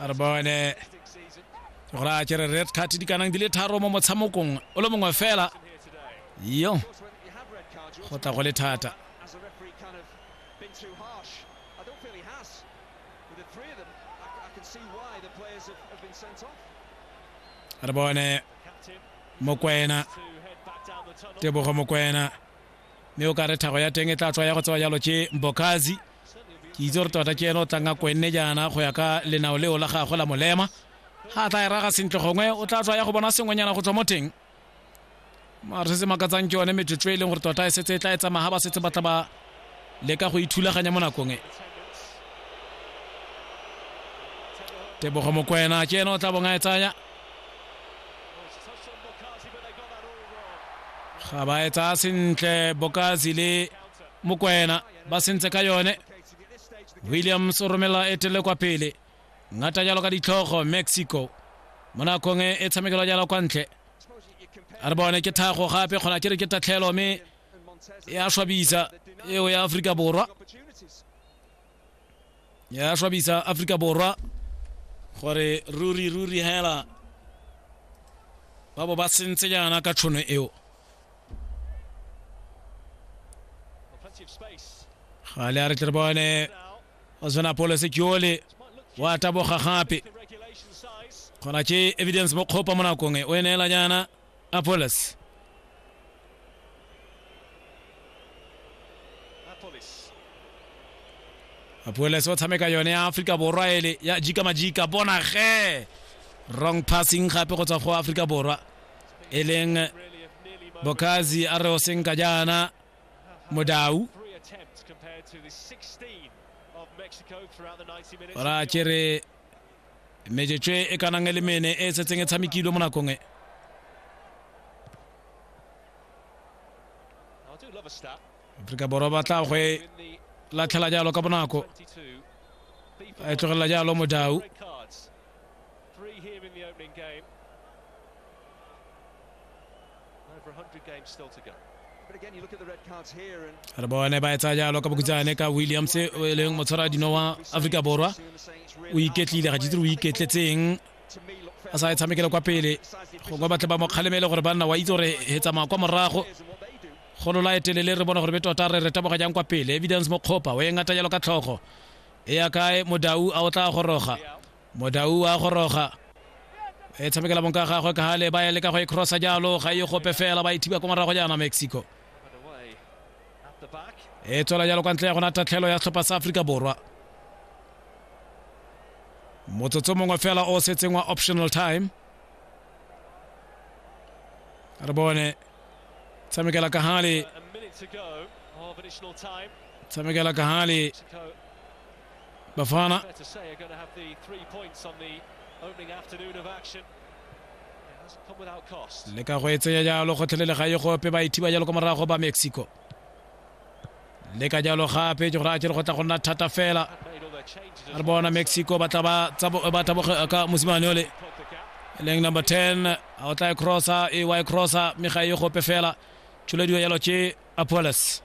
a re bone gore a kere red card di kanang di le tharo mo motshamokong o le mongwe fela yo go tla go le thata re bone mokwena tebogo mokwena mme o ka re thago ya teng e tla tswa ya go tsewa jalo ke mbokazi ke itse gore tota ke ene o tlang a kwenne jaana go ya ka lenao leo la gagwe la molema ga a tla e raga sentle gongwe o tla tswa ya go bona sengwenyana go tswa mo teng mare se se makatsang ke yone metsotso e leng gore tota e setse e tla e tsamaya ba setse ba tla ba leka go ithulaganya mo nakong e tebogo mokwena ke ene o tla bong a e tsaya ga ba etsa sentle bokazi le mokwena ba sentse ka yone williams o romela etele kwa pele ngata jalo ka ditlhogo mexico mo nakong e, e tshamekelo jalo kwa ntle a re bone ke thago gape kgona ke re ke tatlhelo mme e a swabisa eo ya aforika borwa ya swabisa aforika borwa gore ruri ruri hela ba bo ba sentse jaana ka tšhono eo gale a re tle re bone o tshwana polo sekiole wa taboga gape kgona ke evidence mo kgopa mo nakong e o e neela jaana Apolis. apoles o tshameka yone ya aforika borwa ele ya jika majika bona ge wrong passing gape go tswa go aforika borwa e leng bokazi a re o senka jaana modau ora kere mejetswe e ka nang e le mene e setseng e tshamekilwe mo nakong e aforika borwa ba tla go e latlhela jalo ka bonako a e tlogelela jalo modau re bone ba etsa jalo ka bokutsane ka williams e leng motshwara dino wa aforika borwa o iketlile ga jitse o iketletseng a sa e tshamekele kwa pele gongwe batle ba mo kgalemele gore banna wa itse gore he tsamaya kwa morago golo la etelele re bona gore be tota re re taboga jang kwa pele evidence mokgopa o e ngata jalo ka tlhogo e ya kae modau a o tla goroga Modau a goroga e tshamekela bonka ga gagwe ka gale ba ya leka go e crossa jalo ga e gope fela ba e thiba ko morago jaana mexico e tswela jalo kwa ntle ya gona tatlhelo ya setlhopha sa aforika borwa motsotso mongwe fela o setseng wa optional time re bone tshamekela ka gale tshamekela ka gale Bafana. to say are going to have the three points on the opening afternoon of action. le ka go e tsenya jalo gotlhelele ga e gope ba ithiba jalo kwa morago ba mexico le ka jalo gape ke gore a kere go tla go nna thata fela a re bona mexico ba tla ba taboga ka mosimane ole e leng number 10 a o tla e crossa e wa e crossa mme ga e gope fela tšholediwa jalo ke apoles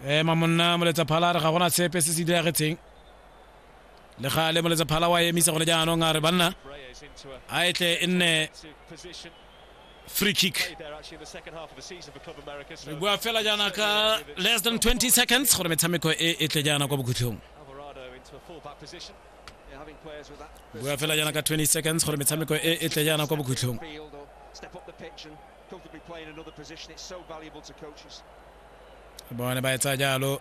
ema monna moletsa phala re ga gona sepe se se diragetseng le ga le moletsa phala wa emisa gone jaanong a re banna a e tle e nne free kick re bua fela jaana ka less than 20 seconds gore metshameko e e tle jaana kwa bokhutlhong bua fela jaana ka 20 seconds gore metshameko e e tle jaana kwa bokhutlhong bone ba etsa jalo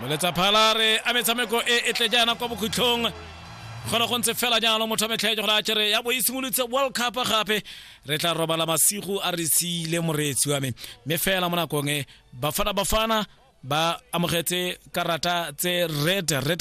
moletsa phalare a metshameko e e tle jaana kwa bokhutlhong kgona go ntse fela jalo motho a metlhaetse gore a kere ya bo e simolotse world cup gape re tla robala masigo a re siile moreetsi wa me mme fela mo nakong e bafana bafana ba amogetse karata tse red red